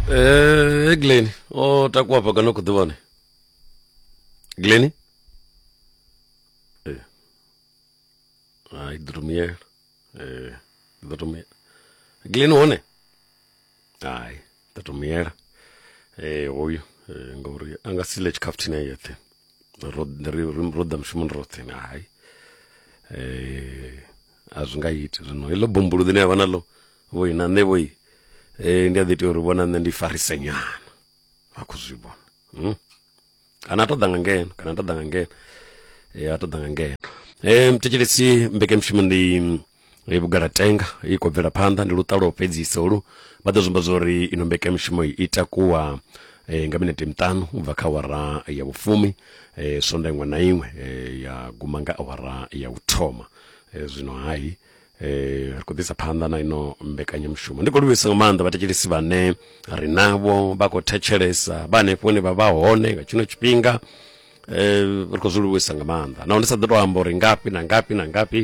Eh, Glenn, o takuwa hafha kana u khou ḓi vhone? Glenn? Eh. Ah, i ḓo to muyela. Eh, i ḓo to muyela. Glenn hone? Hai, i ḓo to muyela. Eh, hoyu eh, ngauri a nga si ḽe tshikhafuthini a yeṱhe. Ro ri ro ḓa mushumoni roṱhe na hai. Eh, a zwi nga iti zwino heḽo bumbulu ḽine ya vha naḽo vhoi na nṋe vhoi um ndi a ḓi tea uri vhona nṋe ndi farise nyana vha khou zwi vhona hmm? kana a to ḓa nga ngeno kana a to ḓa nga ngeno um a to ḓa nga ngeno um thetshelesi mbekemushumo ndi e vhugala tenga i khou bvela phanḓa ndi luṱalo fhedzisa olu vha ḓo zwimba zwori ino mbeka mishumo i takuwa eh, nga minete miṱanu u bva kha awara ya vhufumi eh, sonda iṅwe na iṅwe eh, ya guma nga awara ya u thoma Eh, zwino hai eh, ri khou ḓisa phanḓa na ino mbekanyamushumo ndi khou livhuisa nga maanḓa vhathetshelesi vhane ri navho vha khou thetshelesa vha hanefho hune vha vha hone nga tshino tshifhinga eh, ri khou zwi livhuisa nga maanḓa naho ndi sa ḓo tou amba uri ngafhi na ngafhi na ngafhi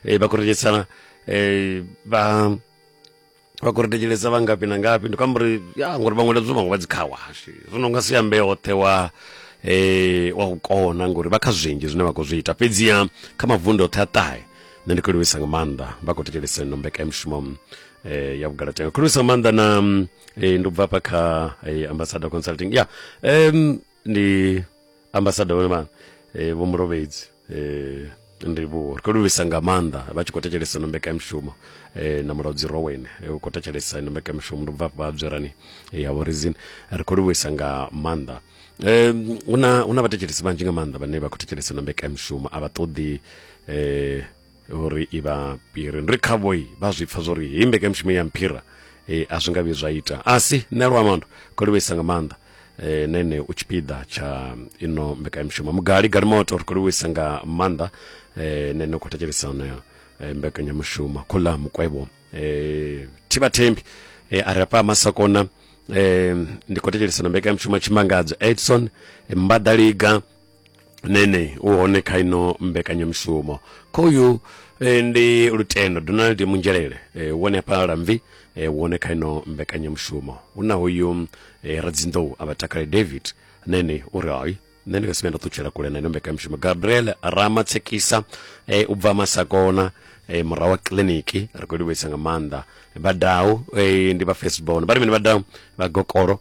eh, vha khou thetshelesa eh, vha vha khou ri thetshelesa vha ngafhi na ngafhi ndi khou amba uri ya ngori vhaṅwe ledzo vhaṅwe vha dzi kha washe zwino nga si ambe hoṱhe wa eh wa u kona ngori vha kha zwinzhi zwine vha khou zwi ita fhedziha kha mavundu oṱhe a ṱahe nṋe ndi khou livhisa nga maanḓa vha khou thetshelesa ino mbekanyamushumo eh ya vhugalatenga khou livhisa nga maanḓa na eh ndi u bva hafha kha eh, ambassador consulting ya em ndi ambasada wema eh, vho murovhedzi eh, ndivhuwo ri khou livhisa nga maanḓa vha tshi khou thetshelesa ino mbekanyamushumo eh, na mulaudzi rowen eh, u khou thetshelesa ino mbekanyamushumo ndi bva vha dzwerani eh, ya vhorizini ri khou livhisa nga maanḓa eh, hu na hu na vhathetshelesi vhanzhi nga maanḓa vhane vha khou thetshelesa ino mbekanyamushumo a vha ṱoḓi eh, uri i vha piri ndi khavhoi vha zwi pfa zwori hei mbekanyamushumo ya mphira e, a zwi nga vhi zwa ita a si nṋe luamando kho livhuisa nga maanḓa e, nene u tshipiḓa tsha ino mbekanyamushumo mugali galimoto ri kho livhuisa nga maanḓa e, nene u khou thetshelesa onoyo e, mbekanyamushumo khola mukwevho e, thivha thembi e, a ri afha masakona e, ndi khou thetshelesa na mbekanyamushumo tshimangadzo edson mbadaliga nene u hone kha ino mbekanyamushumo khoyu e, ndi lutendo donald munzhelele e, wone hafha lamvi e, wone kha ino mbekanyamushumo hu na hoyu e, radzinḓou a vha takale david nene u ri hai nṋe ndi nga si vhe nda ṱutshela kule na ino mbekanyamushumo gabriel ramatsekisa e, u bva masakona e, murahu wa kiliniki ri khou livhuisa nga maanḓa vhadau e, ndi vha festbon vha ri mini vhadau vha gokolo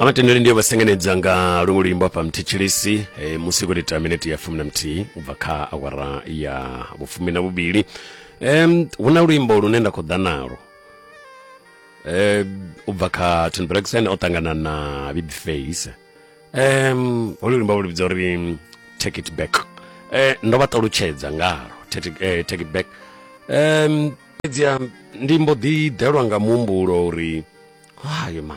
amatendere ndiye vasengenedza nga lungu luimbo apa mthitshilisi e, musi kuli ta minete ya fumi na mthihi ubva kha awara ya vhufumi na vhuvhili um, hu na luimbo lune nda khou ḓa nalo um, ubva kha tony brexon o ṱangana na bibface um holu luimbo lu vhidza uri mm, take it back um ndo vha ṱalutshedza ngalo take it- eh, take it back um fhedziha ndi mbo ḓi ḓelwa nga muhumbulo uri hayo ma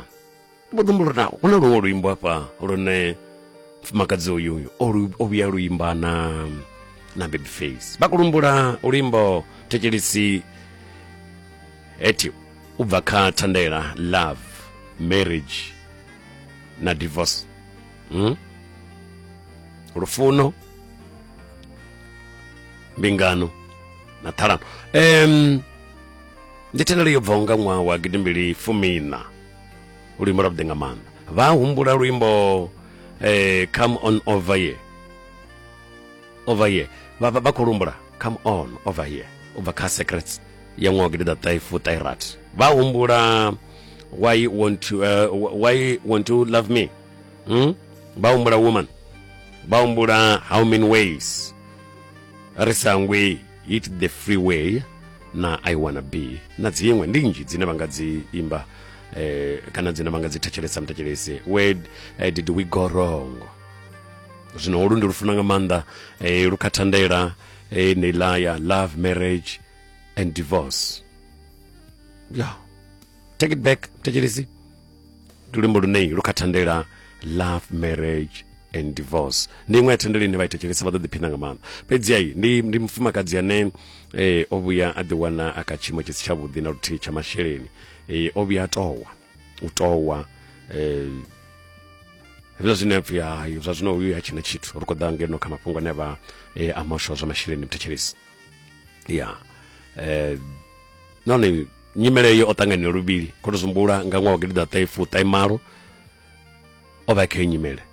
ndi mbo ḓi humbula uri na hu na luṅwe luimbo hafha lune mfumakadzi uyu uyu o lu- o vhuya luimba na na babyface vha kulumbula luimbo thetshelisi hetio u bva kha thandela love marriage na divorce hmm? lufuno mbingano na ṱhalano um, ndi thendelo yo bvaho nga ṅwaha wa gidimbili fumina luimbo lwa vhuḓi nga maanḓa vha humbula luimbo eh, come on over here over here vha vha khou lumbula come on over here u bva kha secrets ya ṅwaha gidi ḓa ṱaifutairat vha humbula why you want to, uh, why you want to love me hmm? vha humbula woman vha humbula how many ways ri sa ngwi hit the free way na i wanna be na dziṅwe ndi nnzhi dzine vha nga dzi imba eh, kana dzine vha nga dzi thetshelesa muthetshelesi where uh, did we go wrong zwino holu ndi lufuna nga maanḓa eh, lu kha thandela eh, neilaya love marriage and divorce yeah. take it back thetshelesi ndi luimbo luneyi lu kha thandela love marriage and divorce ndi iṅwe ya thandela ine vha i thetshelesa vha ḓo ḓiphina nga maanḓa fhedzi ayi ndi, ndi mufumakadzi ane eh, o vhuya a ḓiwana a kha tshiimo tshi si tshavhuḓi na luthihi tsha masheleni eh, o vhuya a towa u towa eh, hezwo zwine a pfi hayi zwa zwino uyu ha tshina tshithu ri khou ḓa ngeno kha mafhungo ane a vha eh, a moswa zwa masheleni mthetshelesi ya eh nahone nyimele iyo o ṱangana luvhili khou tou sumbula nga ṅwaha wa gidi ḓa ṱaifu ṱaimalo o vha khayo nyimele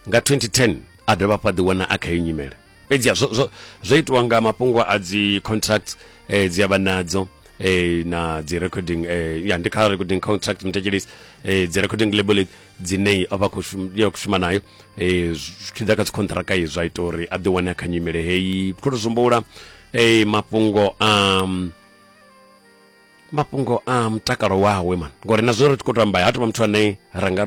nga 2010 a dovha fha ḓiwana a khayo nyimele fhedzi zwo, zwo, zwo itiwa nga mafhungo a dzi contract eh, dzi avha nadzo eh, na dzi recording eh, ya ndi kha recording contract mthetshelisi eh, dzi recording label dzine a vha khou shuma nayo um zwi tshi ḓa kha dzikhonṱhiraka ye zwa ita uri a ḓi wane a kha nyimele heyi khou tou zumbula um mafhungo a mafhungo a mutakalo wawe man ngori na zwino ri tshi khou tamba ha tovha muthu ane ra nga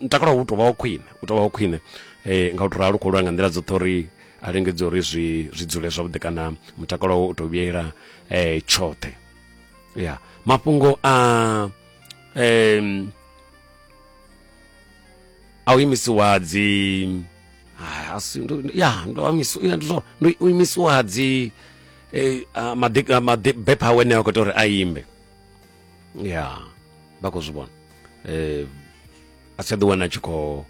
mutakalo wawe u tovha wa khwine u tovha wa khwine um nga u to ralo khou lwa nga nḓila dzoṱhe uri a lingedze uri zwi zwi dzule zwavhuḓi kana mutakalo wawe u to vhuyela um tshoṱhe ya mafhungo a um a u imisiwa dzi ah, asi ndo- ya ndo amisi- ya, ndo- ndo u imisiwa dzi eh, ah, madi- ah, madi- bepha awe ne a khou ita uri a imbe ya vha khou zwi vhona um a si tsha ḓiwana a tshi khou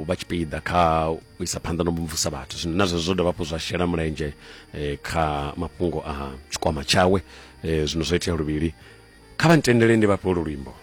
vha tshipiḓa kha u isa phanḓa no mvumvusa vhathu zwino na zwezwo zwo dovha hafhu zwa shela mulenzhe eh, kha mafhungo a tshikwama tshawe eh, zwino zwo itea luvhili kha vha ntendele ndi vhafhe ulu luimbo